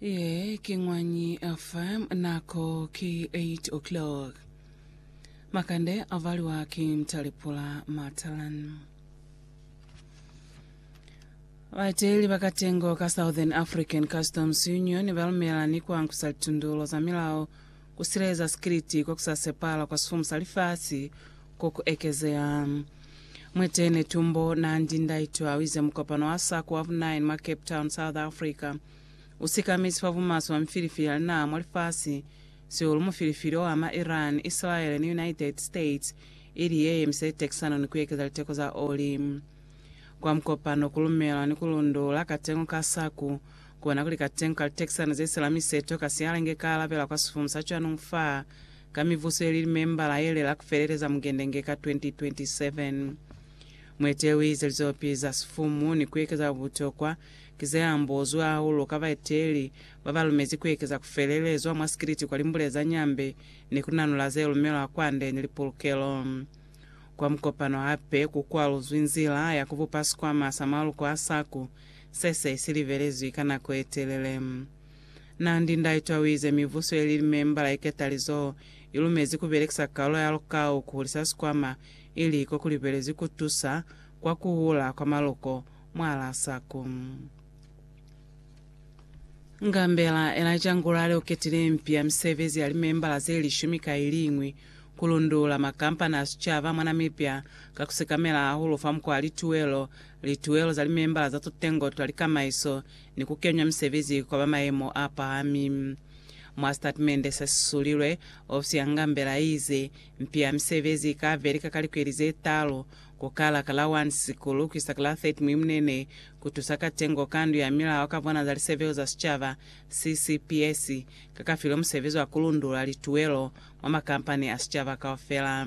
Ye ki Ñwanyi FM, nako ki 8 o'clock. Makande a valiwa ki Mtalepula Matalan. Baeteli ba katengo ka Southern African Customs Union ba lumela ni kwa nkusa litundulo za milao Ku sileleza sikiliti kwa ku sa sepala kwa sifumu sa lifasi ko ku ekezeha. Mwetehi Netumbo Nandi Ndaitwah uize mukopano wa SACO wa vu 9 mwa Cape Town, South Africa, u sikamizi fa bumaswe bwa mifilifili ya linaha mwa lifasi, sihulu mufilifili o ama Iran, Isilaele ni United States, ili ye yemise litekisano ni ku ekeza liteko za oli. Kwa mukopano ku lumelwa ni ku lundula katengo ka SACO, Kona kuli ka tengo ka litexana ze sila mi seto ka siala inge ka alabela kwa sifumu sa cwanungu fa ka mivuso ye li limembala ye lela ku feleleza mugende inge ka 2027. Mueteli u ize lizopi za sifumu ni ku ekeza kwa butokwa ki ze ambozwi hahulu ka baeteli ba ba lumezi ku ekeza ku felelezwa mwa sikiliti kwa limbule za Nyambe ni ku nanula ze lumelwa kwande ni lipulukelo kwa mukopano. Hape ku kwaluzwi nzila ya ku bupa sikwama sa maluko a SACU Se se si libelezwi ka nako ye telele. Nandi Ndaitwah uize mibuso ye li limembala i ketalizoho i lumezi ku belekisa kalulo ya lukau ku hulisa sikwama ili ko ku libelezwi ku tusa kwa ku hula kwa maluko mwalaa saku. Ngambela Elijah Ngulale u ketile impi ya misebezi ya limembala ze lishumi ka i liñwi ku lundulula makampani a sicaba mwa Namibia ka ku sekamela hahulu fa mukwa lituwelo Lituelo za limembala za tutengo twa likamaiso ni kukenywa misebezi kwa ba mayemo a pahami. Mwa sitatimende se sisulilwe, ofisi ya Ngambela iize, Mpi ya misebezi ika ve lika ka likweli ze talu, ku kala ka la 1 Sisikulu kuisa ka la 30 Mwimunene, ku tusa ka tengo ka Ndu ya Milao ka Vana za Lisebeo za Sicaba, CCPS, ka ka filwe musebezi wa ku lundulula lituelo mwa makampani a sicaba kaufela.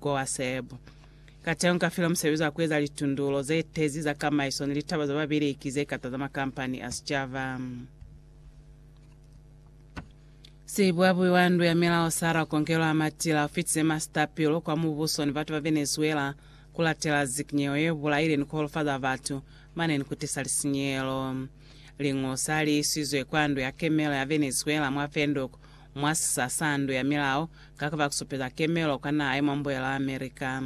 Kowa Seb. Kateho nka filwa musebezi wa kueza litundulo ze tezi za kamaiso ni litaba za babeleki ze kata za makampani a sicaba. Sibuabui wa ndu ya milao Sara Conkelo a matila ufitize masita pilu kwa mubuso ni batu ba Venezuela kulatela zikinyeho ye bulaile ni kuholofaza batu mane ni kutisa lisinyelo. Lingu sa li isizwe kwa ndu ya kemelo ya Venezuela mwa Windhoek mwa sisa sa ndu ya milao ka ku ba kusupeza kemelo kwa naha ye mwa Mbuyelo wa America.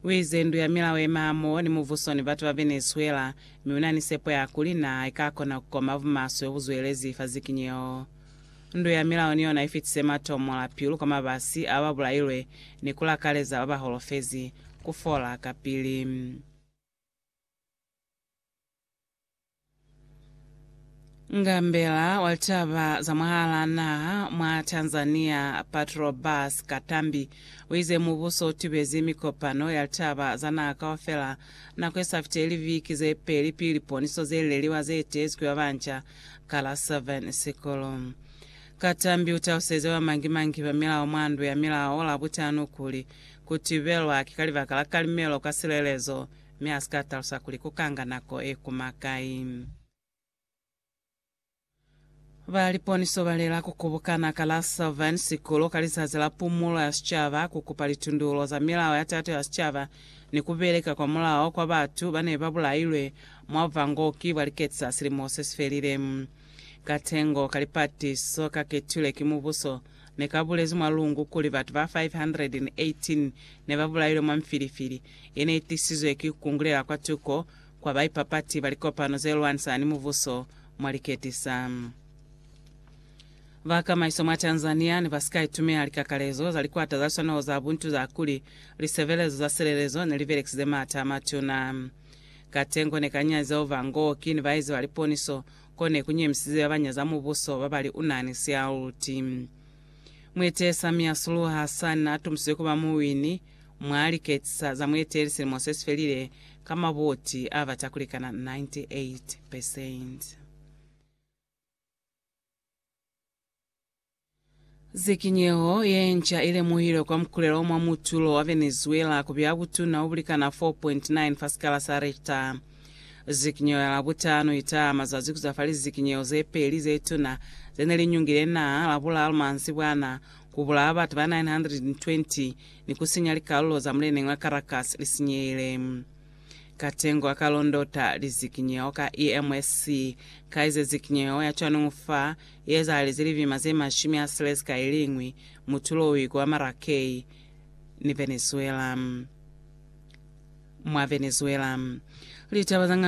U ize, Ndu ya milao yema hamoho ni muvuso ni batu ba Venezuela, mi una ni sepo ya kuli naha ika kona ku koma bumaswe ho bu zwelezi fa zikinyeho. Ndu ya milao ni yona i fitise matomo la pilu kwa mabasi a ba bulailwe ni ku lakaleza ba ba holofezi ku fola kapili. Ngambela wa litaba za mwahalaa naha mwa Tanzania Patrobas Katambi uize mubuso utibezi mikopano ya litaba za naha kaufela nako isafiti liviki zepeli pili liponiso zeleliwa zeetezi kuba banca ka la 7 Sikulu. Katambi utaluseze bamangi-mangi ba milao mwa ndu ya milao Labutano kuli kutibelwa ki kalibaka la kalimelo ka silelezo mi a si ka talusa kuli ku ka nga nako e kuma kai. Ba liponiso ba lela ku kubukana ka la Sylvan Sikulu ka lizazi la pumulo ya sicaba ku kupa litundulo za milao ya tato ya sicaba ni ku beleka kwa mulao kwa batu ba ne ba bulailwe mwa buvangooki bwa liketi za silimo se si felile. Katengo ka lipatiso ka ketilwe ki mubuso ne ka bulezi mwa lungu kuli batu ba 518 ne ba bulailwe mwa mifilifili Ye ne i tisizwe ki ku kungulela kwa tuko kwa baipapati ba likopano ze lwanisa ni mubuso mwa liketi sa ba kamaiso mwa Tanzania ne ba si ka itumela likakalezo za likwata za liswanaho za buntu za kuli lisebelezo za silelezo ne li belekisize maata a matuna. Katengo ne kanyazi zeo ba Ngooki ni baezi ba liponiso ko ne ku nyemisize ba ba nyaza mubuso ba ba li u na ni sialuti. Muetesa Miasuluha Hassan a tumusizwe ku ba muwini Mwa liketisa za mueteli silimo se si felile, ka mabuti a bata kulikana 98 percent. Zikinyeho ye nca i lemuhilwe kwa mukulelo mwa mutulo wa Venezuela ku bya butuna o bulikana 4.9 fa sikala sa Richter. Zikinyeho ya Labutano i taha mazazi ku za fali zikinyeho ze peli ze tuna ze ne li nyungile naa Labulalu mansibwana Ku bulawa batu ba 920 ni ku sinya likalulo za muleneñi wa Caracas li sinyehile. Katengo a ka londota lizikinyeho ka EMSC ka ize zikinyeho ya cwanungu fa ye ezahalezi libima ze mashumi a silezi ka iliñwi, mutulo u ikuba Maracay ni Venezuela. Mwa Venezuela, litaba za